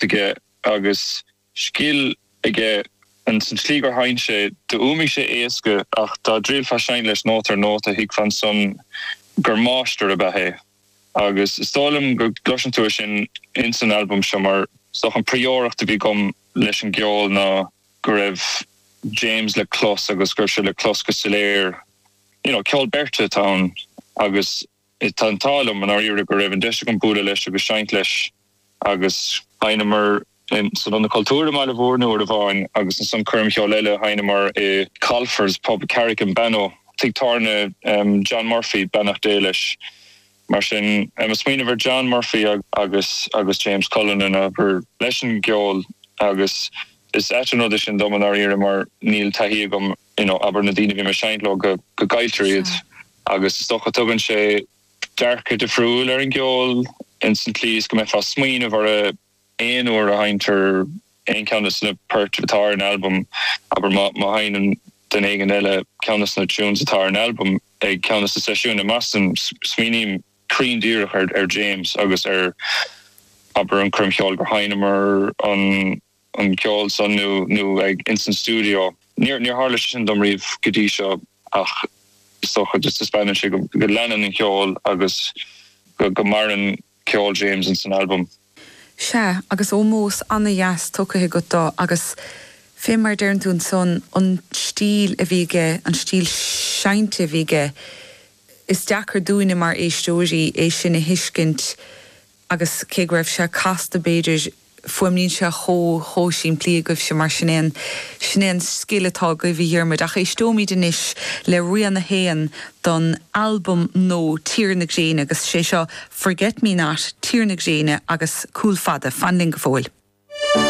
aige agus scil aige ins an tslí gur sheinn sé. Do fhuaimigh sé éasca ach dá dtriailfeá seinnt leis nóta ar nóta thuigfeá ansan gur máistir ab ea é agus is dóigh liom go gcloiseann tú é sin ins an albam seo mar is dócha an prióireacht a bhí agam leis an gceol ná go raibh James le clos agus go raibh sé le clos go soiléir. You know ceol beirte atá ann agus. Tá an t-ádh liom i ndáiríre go raibh an deis agam bualadh leis agus seinnt leis agus. Sheinneamar san Ionad Cultúir i mBaile Mhúirne uair amháin agus ansan coirm cheoil eile a sheinneamar i Colfer's Pub, Carrig-on-Bannow, tigh tábhairne John Murphy, beannacht Dé leis. Mar sin, ag smaoineamh ar John Murphy agus agus James Cullinan abair leis an gceol agus is ait an rud é sin dom i ndáiríre mar níl taithí agam you know abair na daoine a bhí mé ag seinnt leo go go gcailltear iad agus is dócha tugann sé dearcadh difriúil ar an gceol ins an tslí is go mbeifeá ag smaoineamh ar a aon uair a sheinntear aon cheann de na poirt atá ar an albam abair má má sheinneann duine éigin eile ceann de na tunes atá ar an albam ag ceann de na seisiúin i mBoston smaoiním cruinn díreach ar ar James agus ar abair an coirm cheoil gur sheinneamar an an ceol san nó ag ins an stiúideo. Níor tharla sé sin dom riamh go dtí seo ach is dócha go taispeánann sé go leanann an ceol agus go maireann ceol James ins an albam. Sea, agus ómós ana-dheas tugtha agat dó agus fé mar a deireann tú ansan, an stíl a bhí aige, an stíl seinnte a bhí aige, is deacair dúinne mar éisteoirí é sin a thuiscint. agus cé go raibh sé casta b'fhéidir, fuaimníonn sé chomh, chomh simplí agaibhse mar sin é an, sin é an scil atá agaibh a Dhiarmuid ach éisteoimid anois le rian a haon don albam nua Tír na Gréine agus sé seo Forget Me Not, Tír na Gréine agus Cúl Fada, fan linn go fóill.